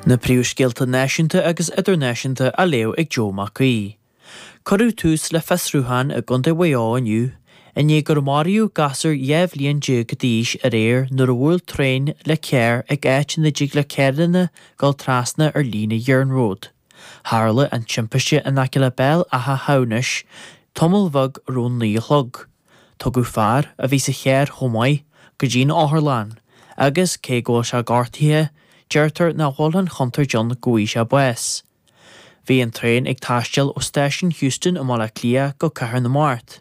Na príomhscéalta náisiúnta agus idirnáisiúnta á léamh ag Joe Mac Aoidh. Cuireadh tús le fiosrúchán i gContae Mhaigh Eo inniu i ndiaidh gur maraíodh gasúr dhá bhliain déag d'aois aréir nuair a bhuail traein le carr ag áit ina dtig le carranna a dhul trasna ar líne iarnróid. Tharla an timpiste in aice le Béal Átha hAmhnais tamall beag roim naoi a chlog. Tugadh fear, a bhí sa charr chomh maith, go dtí'n otharlann, agus, cé go bhfuil sé gortaithe, deirtear nach bhfuil an chontúirt ann go bhfaighidh sé bás. Bhí an traein ag taisteal ó Stáisiún Heuston i mBaile Átha Cliath go Cathair na Mart,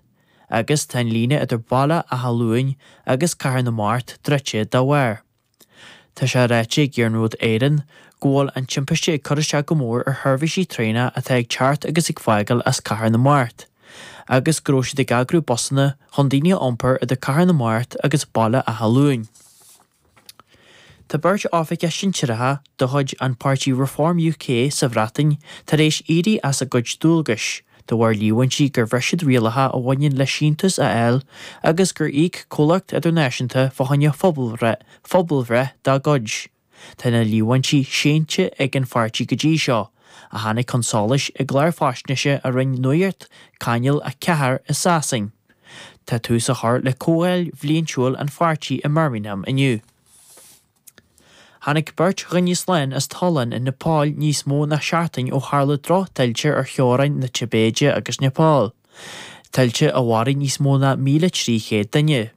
agus tá an líne idir Baile Átha Luain agus Cathair na Mart druidte dá bharr. Tá sé ráite ag Iarnród Éireann go bhfuil an timpiste ag cur isteach go mór ar sheirbhísí traenach atá ag teacht agus ag fágáil as Cathair na Mart, agus go raibh siad ag eagrú busanna chun daoine a iompar idir Cathair na Mart agus Baile Átha Luain. Tá beirt oifigeach shinsearacha de chuid an pháirtí Reform UK sa Bhreatain tar éis éirí as a gcuid dualgais, De bharr líomhaintí gur bhris siad rialacha a bhaineann le síntiús a fháil agus gur íoc comhlacht idirnáisiúnta fá choinne pobalbhreith dá gcuid, tá na líomhaintí séanta ag an pháirtí go dtí seo, a tháinig chun solais i gclár faisnéise a rinne Nuacht Channel 4 i Sasain. Tá tús á chur le comhdháil bhliaintiúil an pháirtí i mBirmingham inniu. Tháinig beirt dhuine slán as tollán i Nepal níos mó ná seachtain ó tharla drochthuilte ar theorainn na Tibéide agus Nepal, tuilte a mharaigh níos mó ná 1,300 duine.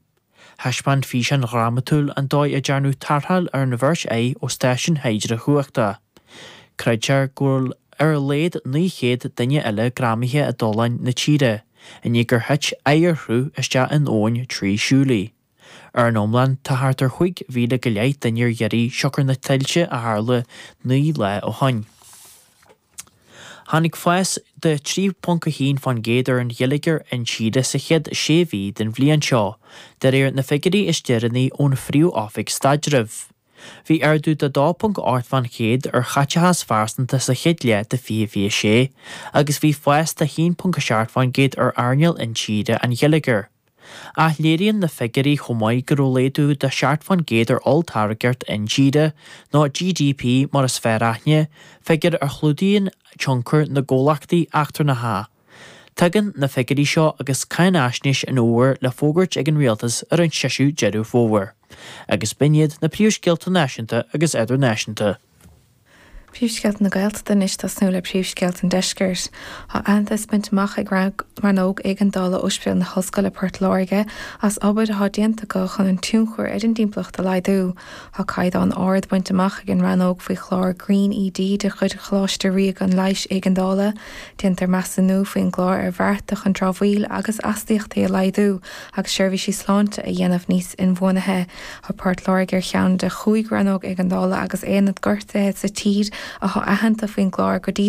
Thaispeáin físeán dhrámatúil an dóigh a ndearnadh tarrtháil ar an bheirt acu ó stáisiún hidreachumhachta. Creidtear go bhfuil ar a laghad 900 duine eile greamaithe i dtolláin na tíre, i ndiaidh gur thit oighearshruth isteach in abhainn Trishuli. Ar an iomlán, tá thart ar chúig mhíle go leith duine ar iarraidh siocair na tuilte a tharla naoi lá ó shoin. Tháinig fás de 3.1 fán gcéad ar an gheilleagar intíre sa chéad sé mhí den bhliain seo, de réir na figiúirí is deireanaí ón Phríomh-Oifig Staidrimh. Bhí ardú de 2.8 fán gcéad ar chaiteachas phearsanta sa chéad leath de 2026 agus bhí fás de 1.7 fán gcéad ar earnáil intíre an gheilleagair. Ach léiríonn na figiúirí chomh maith go raibh laghdú de seacht fán gcéad ar olltáirgeacht intíre, nó GDP mar is fearr aithne, figiúr a chlúdaíonn tionchar na gcomhlachtaí eachtrannacha. Tagann na figiúirí seo agus cáinfhaisnéis an fhómhair le fógairt ag an Rialtas ar an séú Deireadh Fómhair, agus b'in iad na príomhscéalta náisiúnta agus idirnáisiúnta. Príomhscéalta na Gaeltachta Anois tosnú le príomhscéalta an Deiscirt. Tá aitheantas bainte amach ag Rannóg Éigeandála Óispidéal na hOllscoile Port Láirge as obair atá déanta acu chun an tionchar ar an dtimpeallacht a laghdú. Tá caighdeán ard bainte amach ag an rannóg faoi chlár Green ED de chuid Choláiste Ríoga an Leighis Éigeandála. Déantar measúnú faoin gclár ar bhearta chun dramhaíl agus astaíochtaí a laghdú agus seirbhísí sláinte a dhéanamh níos inbhuanaithe. Tá Port Láirge ar cheann de chúig rannóg éigeandála agus aonad gortaithe sa tír athá aitheanta faoin gclár go dtí